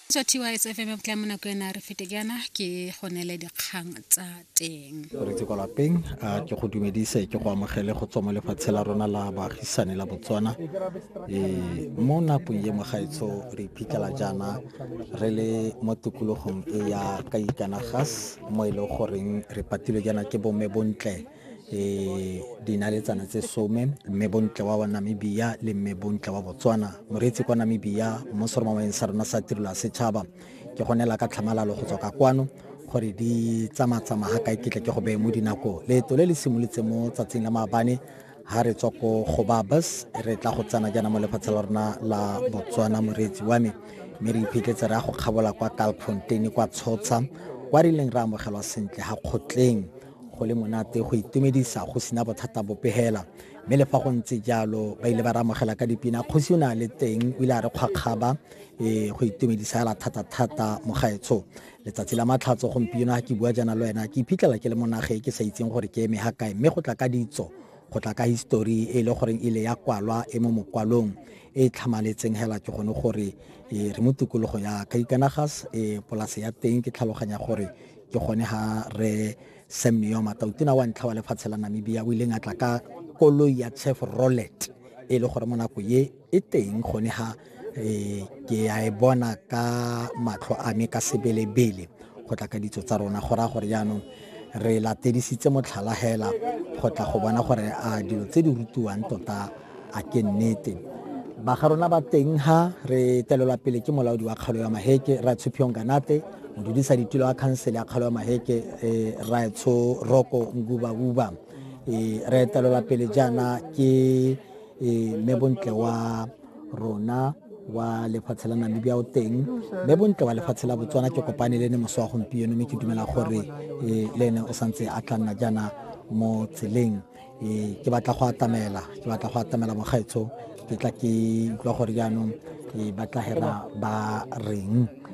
tswa tys fm tla mo nako ena re fete jaana ke go neele dikgang tsa teng re tse kwa lapeng a ke go dumedise ke go amogele go tswa mo lefatshe la rona la baagisane la botswana um mo nakong ye mogaetsho re iphitlhela jaana re le mo tikologong e ya ka ikanagas mo e leng goreng re patilwe jaana ke bomme bontle e dinaletsana tse some mme bontle wa wa namibia le mme bontle wa botswana moreetsi kwa namibia mo seromameng sa rona sa tirelo ya setšhaba ke gonela ka tlhamalalo go tswa ka kwano gore di tsamatsama ga kae ketle ke go beye mo dinako leeto le le simolotse mo tsatsing la maabane ha re tswa ko go babas re tla go tsena jaana mo lefatshe la rona la botswana moreetsi wa me mme re iphitletse re ya go kgabola kwa kalfonteine kwa tshotsha kwa re ileng re amogelwa sentle ga kgotleng Go le monate go itumedisa go sena bothata bope hela. Mme le fa go ntse jalo ba ile ba re amogela ka dipina. Kgosi o ne a le teng o ile a re kgwakgaba ee go itumedisa hela thata-thata mogaetsho. Letsatsi la matlhatso gompieno ga ke bua jaana le wena ke iphitlhela ke le mo nageng ke sa itseng gore ke eme ha kae mme go tla ka ditso go tla ka history e e le goreng e ile ya kwalwa e mo mokwalong e e tlhamaletseng hela ke gone gore re mo tikologo ya Kaikaanagas polase ya teng ke tlhaloganya gore ke gone ga re sam neo matautona wa ntlha wa lefatshe la namibia o ileng a tla ka koloi ya chef rollet e le gore mo nako ye e teng gone ga um ke a e bona ka matlho a me ka sebelebele go tla ka ditso tsa rona go raya gore jaanong re latedisitse motlhala hela go tla go bona gore a dilo tse di rutiwang tota A ke nnete ba ga rona ba teng ha re telelwa pele ke molaodi wa kgalo ya maheke ra tshuphiong kanate modudisa ditulo wa khansele ya kgalo ya maheke eh, ra tsho roko nguba uba eh, re telelwa pele jaana ke eh, mme bontle wa rona wa lefatshe la namibia o teng mme bontle wa lefatshe la botswana ke kopane le ne moso wa gompieno mme ke dumela gore eh, le ene o santse a tla nna jaana mo tseleng ee ke batla go atamela ke batla go atamela mogaetsho ke tla ke utlwa gore jaanong ee ba tla hela ba reng